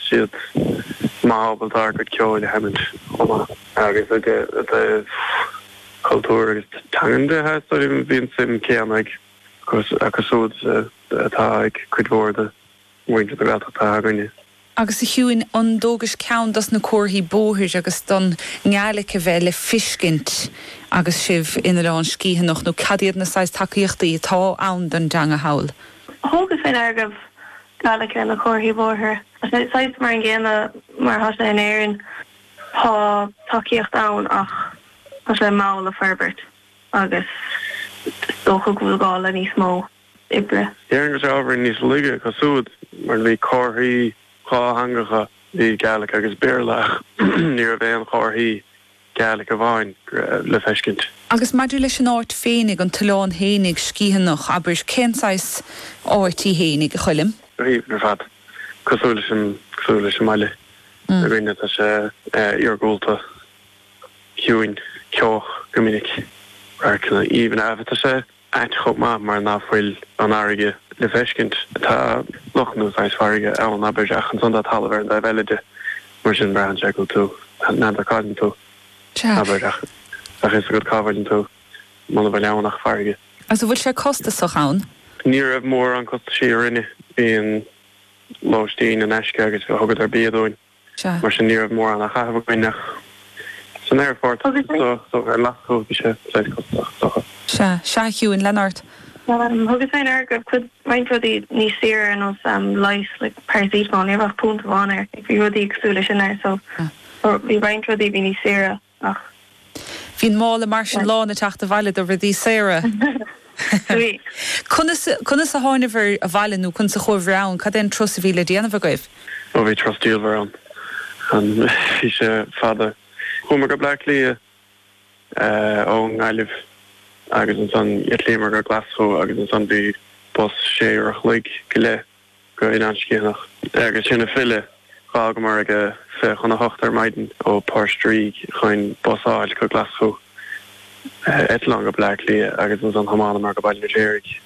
siad maith ábalta ár gcuid ceoil a sheimint chomh maith. Agus i dtaobh cultúr agus teangan de, theastaíonn, bhí an suim chéanna acu siúd atá ag cuid mhór de mhuintir na Gaeltachta againne. Agus a Shiúin an dtugais ceann dos na comharthaí bóthair agus don nGaelic a bheith le fiscint agus sibh in Oileán Sgitheanach nó cad iad na saghas tacaíochtaí atá ann don dteanga thall? Thugas fé ndeara go raibh Gaelic ar na comharthaí bóithre. Saghas mar an gcéanna mar atá sé in Éirinn, tá tacaíocht ann ach tá sé mall ag forbairt agus is dócha go bhfuil gá le níos mó oibre. Déarfainn go bhfuil sé ábhar níos laige acu siúd mar bhí comharthaí dhátheangacha, bhí Gaelic agus Béarla ach ní raibh aon chomharthaí. Gaelic amháin le feiscint. Agus maidir leis an áit féinig, an t-oileán fhéinig, Sgiathanach, abair, cén saghas áit í fhéinig, a Choilm? Bhí, ar fad. Cosúil leis an, cosúil leis an mbaile againne, tá sé iargúlta, ciúin, ceoch go minic, radharcanna aoibhne abair. Tá sé. ait chomh maith mar ná fuil an fharraige le feiscint. Tá loch nó saghas farraige ann, abair, ach ansan tá talamh ar an dtaobh eile de. Mar sin braitheann sé go bhfuil tú, n'fheadar cá bhfuil tú, abair, ach bheadh fhios agat cá bhfuileann tú muna bhfuil ann ach farraige. Agus an bhfuil sé costasach ann? Ní raibh mórán costaisí orainne. Bhí an lóistín in aisce agus thugadar bia dúinn. Sea. Mar sin ní raibh mórán á chaitheamh againn ach san aerfort Agus é? so ar leath chomh bhí sé saghas cosúil dochar. Sea, sea, a Shiúin lean ort. Thugas fé ndeara go raibh cuid roinnt rudaí níos saoire ar nós leigheas like paracetamol, ní raibh ach punt amháin air, like bhí rudaí cosúil le sin air so bhí roinnt rudaí bhí níos saoire. Ach bhí an mála mar sin lán ag teacht abhaile do rudaí saora. Conas a thánabhair abhaile nó conas a chuabhair ann? Cad é an turas a bhí le déanamh agaibh? Ó bhí turas diamhair ann and bhí sé fada. Chuamar go Bleá Cliath ó nGaillimh agus ansan d'eitlíomar go Glaschu agus ansan bhí bus sé uair a chloig go leith. go Oileán Sgitheanach agus ansin ag filleadh. D'fhágamar aige fiche chun a hocht ar maidin ó Port Ríg chun bus a fháilt go Glaschú, eitleán go Bleá Cliath agus ansan thiomáineamar go Baile an Fheirtéaraigh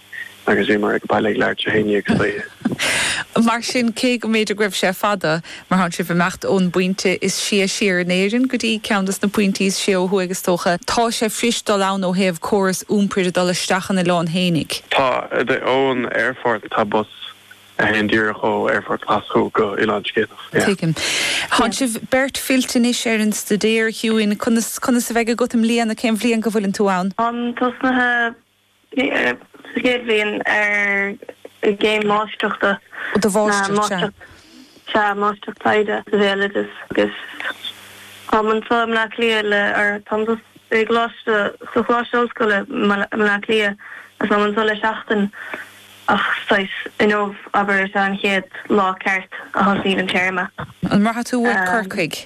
agus bhíomar ag baile ag leathuair tar éis a haon déag istoíche. Mar sin, cé go mb'fhéidir go raibh sé fada, Mar tánn sibh ag imeacht ón bpointe is sia siar in Éirinn go dtí ceann dos na pointí is sia ó thuaidh is dócha, tá sé fuirist dul ann ó thaobh córas iompair de dul isteach an oileán fhéinig. Tá, ón aerfort tá bus a théann díreach ó aerfort Ghlaschú go Oileán Sgitheanach. Tuigim. Tánn sibh beirt fillte anois ar an staidéar, a Shiúin, conas a bheidh agat i mbliana, cén bhliain go bhfuileann tú ann? Táim tosnaithe sa chéad bhliain ar an gcéim mháistreachta do Mháistreacht, sea. sea, Máistreacht Taighde sa Bhéaloideas agus táim anseo i mBleá Cliath le ar táim sa i gColáiste sa Choláiste Ollscoile i mBleá Cliath agus táim anseo le seachtain ach saghas inniu abair is ea an chéad lá ceart a thosnaíonn an téarma. An mbraithfidh tú uait Corcaigh.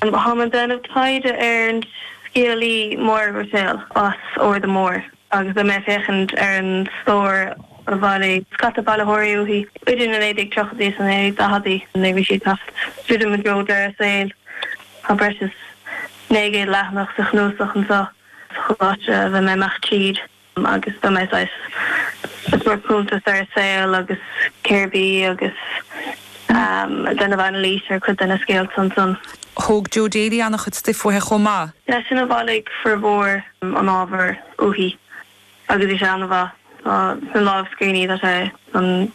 Táim ag déanamh taighde ar an scéalaí Máire Ruiséal as Arda Mór agus beidh mé ag féachaint ar an stór a bhailigh scata bailitheoirí uaithi idir na 1930idí is na 1940idí nuair a bhí sí ag teacht druidim i dtreo deireadh a saoil. Tá breis is 900 leathanach sa chnuasach anseo sa choláiste a bheidh mé ag dul tríd. agus beidh mé saghas ag tabhairt cuntas ar a saol agus cérbh í agus ag déanamh anailís ar chuid de na scéalta ansan. Thóg Joe Daly an-chuid stuif uaithi chomh maith. Seisean a bhailigh formhór an ábhair uaithi agus bhí sé an-mhaith. Tá sna lámhscríbhinní, tá sé san.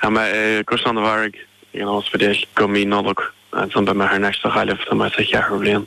Tá mé i gCaisleán an Bharraigh ag an óspidéal go mí Nollag agus ansin beidh mé thar n-ais sa Ghaillimh, tá mé sa cheathrú bhliain.